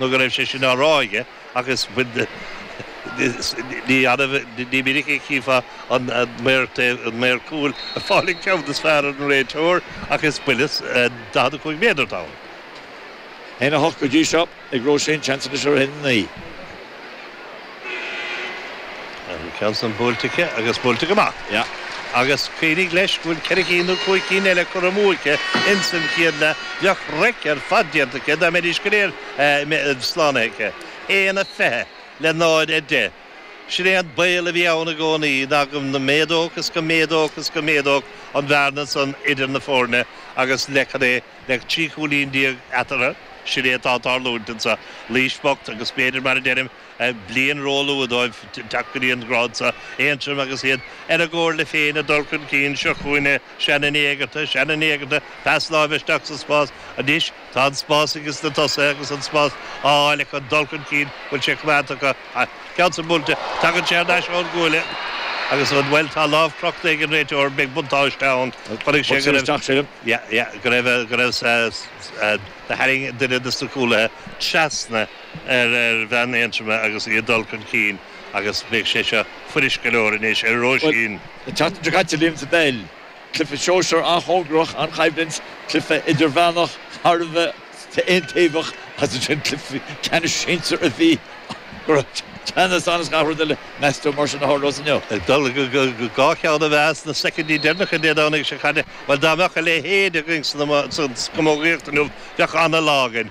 nó go raibh sé sin á rá aige agus ní minic a chífeá an maor cúil ag fáil an ceann is fearr ar an réiteoir ach is buille 45 méadar atá ann. 1, 8 go dtí seo ag Róisín, seans anois ar 1, 9. Bhí an ceann san buailte aici agus buailte go maith. Agus cuimhnigh leis go bhfuil ceithre cinn nó cúig cinn eile curtha amú aici ins an chéad leath. Bheadh raic ar fad déanta aici dá mbeidís go léir slánaithe aici. 1 a 20 le 0 a 10. Sin é an baol a bhí ann i gcónaí, ná go méadódh is go méadódh is go méadódh an bhearna san idir na foirne agus le, cad é, le trí chúilín déag eatarthu, sin é atá ag tarlúint anso. Laois bocht agus b'fhéidir, mar a deirim, Bliain róluath dóibh teacht go dtí an grád seo. Aontroim agus iad ar a gcomhairle féin ag dul chun cinn. Seo chugainn é. Shannon Ní Éigeartaigh. Shannon Ní Éigeartaigh, pas láimhe isteach sa spás. Anois tá an spás aige sna tosaithe agus an spás á fháil acu. Dul chun cinn bhfuil sé coimeádta acu. Ceann san buailte. Tagann sé ar ais ón gcuaille agus an bhuel tá lámh crochta ag an réiteoir. Beidh buntáiste ann. Chonaic sé go raibh go raibh go raibh tharraing duine de na cúlaithe trasna. ar bhean Aontroma agus í ag dul chun cinn agus beidh sé seo fuirist go leor anois ar Róisín. An tseachtain seo caite bhíomar sa bpeil. Cluiche sóisear an-chóngarach, an-choimhlint, cluiche idirmheánach thar a bheith aontaobhach agus ansin cluiche ceannais sinsir a bhí go raibh teannas ann is gach rud eile. Meas tú mar sin a tharlós inniu. Ag dul go dhá cheann a bheas sna soicindí deireanacha Dé Domhnaigh seo caite. Bhuel dá mbeadh a leithéid againn sa gcamógaíocht inniu bheadh an-lá againn.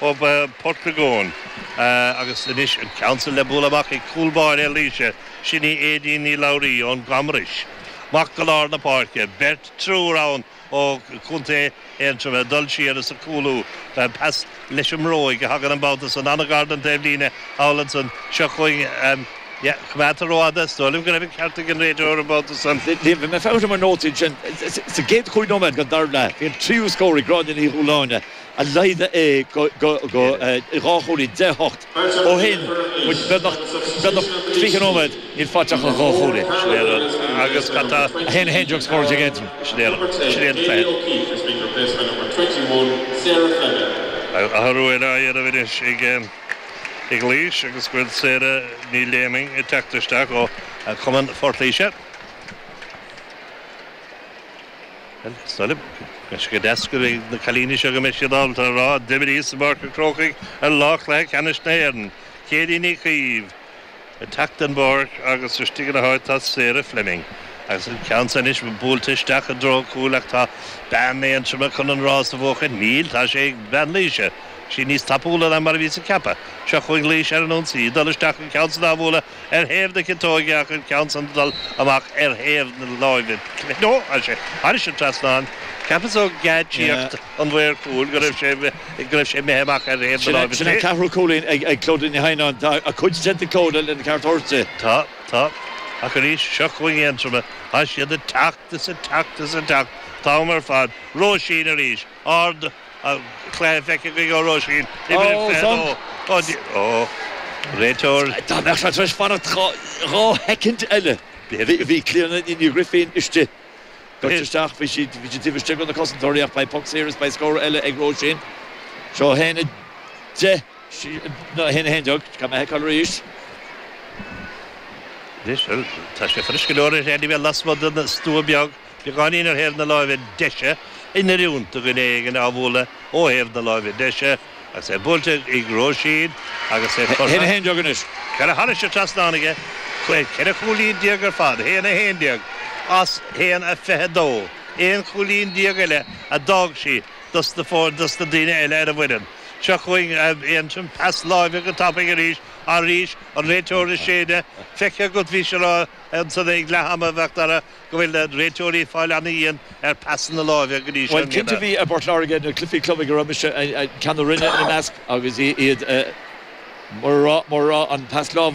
ó Portagóin agus anois an ceann san le bualadh amach ag cúl báire Laoise, sin í Aedín Ní Labhraí ón gCamros. Amach go lár na páirce, beirt, triúr ann ó chontae Aontroma, dul siar is ag cúlú, pas leis an mbróig a thagann an babhta san, an-ghar don taobh líne thall ansan, seo chugainn an coimeádta rófhada, is dóigh liom go raibh an ceart ag an réiteoir an babhta san. Bhí mé ag féachaint i mo nótaí ansin, sa gcéad chúig nóiméad den dara leath, bhí an tríú scór ag Gráinne Ní Dhúláine, a laghdaigh é go dhá chúilín, deich a hocht. Ó shin, muid, beagnach tríocha nóiméad, níl faighte ach an dá chúilín. Sin é an rud. Agus cad tá? 1 a haon deag scór déag Aedraen. Sin é an rud. Sin é an fear. Athrú eile á dhéanamh anois ag Laois agus go bhfuil Sarah Ní Léimín ag teacht isteach ó chumann Phort Laoise. Saillim. Sé go deas dos na cailíní seo go mbeidh siad ábalta a rá d'imríos-sa i bPáirc an Chrócaigh ar lá chluiche ceannais na hÉireann. Céirín Ní Chaoimh, ag teacht den bpáirc agus istigh ina háit tá Sarah Fleming. Agus an ceann seo anois buailte isteach i dtreo cúil ach tá bean Aontroma chun an rás a bhuachan. Níl, tá sé ag bean Laoise. Sé níos tapúla ná mar a bhíos ag ceapadh. Seo chugainn Laoise ar an ionsaí, ag dul isteach, an ceann san á bhualadh. Ar thaobh na ciotóige ach an ceann san ag dul amach ar thaobh na láimhe clé. Ó, tá sé thairis an trasnán, cheapas ó gheáitsíocht an mhaoir chúil go raibh sé, go raibh sé imithe amach ar thaobh na láimhe clé. Sin an ceathrú cúilín ag Clodagh Ní Theimhneáin. Tá a cuid déanta ag Clodagh lena ceart thabhairt di. Tá, tá. Ach arís, seo chugainn Aontroim. Tá siad ag teacht is ag teacht is ag teacht. Tá am ar fad. Róisín arís. Ard, a chlaochlaigh feicthe againn ó Róisín, Imreoir 22 Ó, réiteoir. Dá mbeadh sé tar éis fanacht dhá shoicind eile, bhí Clíodhna Ní Ghrifín istigh. Beirt isteach, bhí siad taobh istigh de na cosantóirí ach beidh poc saor is beidh scór eile ag Róisín. Seo 1-10, nó 1-11, gan mé a fheiceáil arís. Anois, bhuel, tá sé frisce go leor ar aon ní bheith lasmuigh den stua beag. Beagáinín ar thaobh na láimhe deise, in oiriúint do dhuine éigin á bhualadh ó thaobh na láimhe deise, agus é buailte ag, ag Róisín agus é curtha. 1, 11 anois. Ceithre, thairis an trasnán aici, ceithre chúilín déag ar fad, 1, 11, as 1, 22, aon chúilín déag eile a d'fhág sí dos na, ó, dos na daoine eile ar an bhfoireann. Seo chugainn Aontroim, pas láimhe go tapaidh arís, arís, an réiteoir ag séideadh, feicthe agat, bhís ag rá ansan ag leath ama a Mhac Dara. go bhfuil na réiteoirí ag fáil an-dhian ar phasanna láimhe go dtí seo i mbliana. Bhuel, cinnte i bPort Láirge, na cluichí club ag a raibh mise, ceann na Rinne ina measc agus iad, mar a raibh an pas láimhe,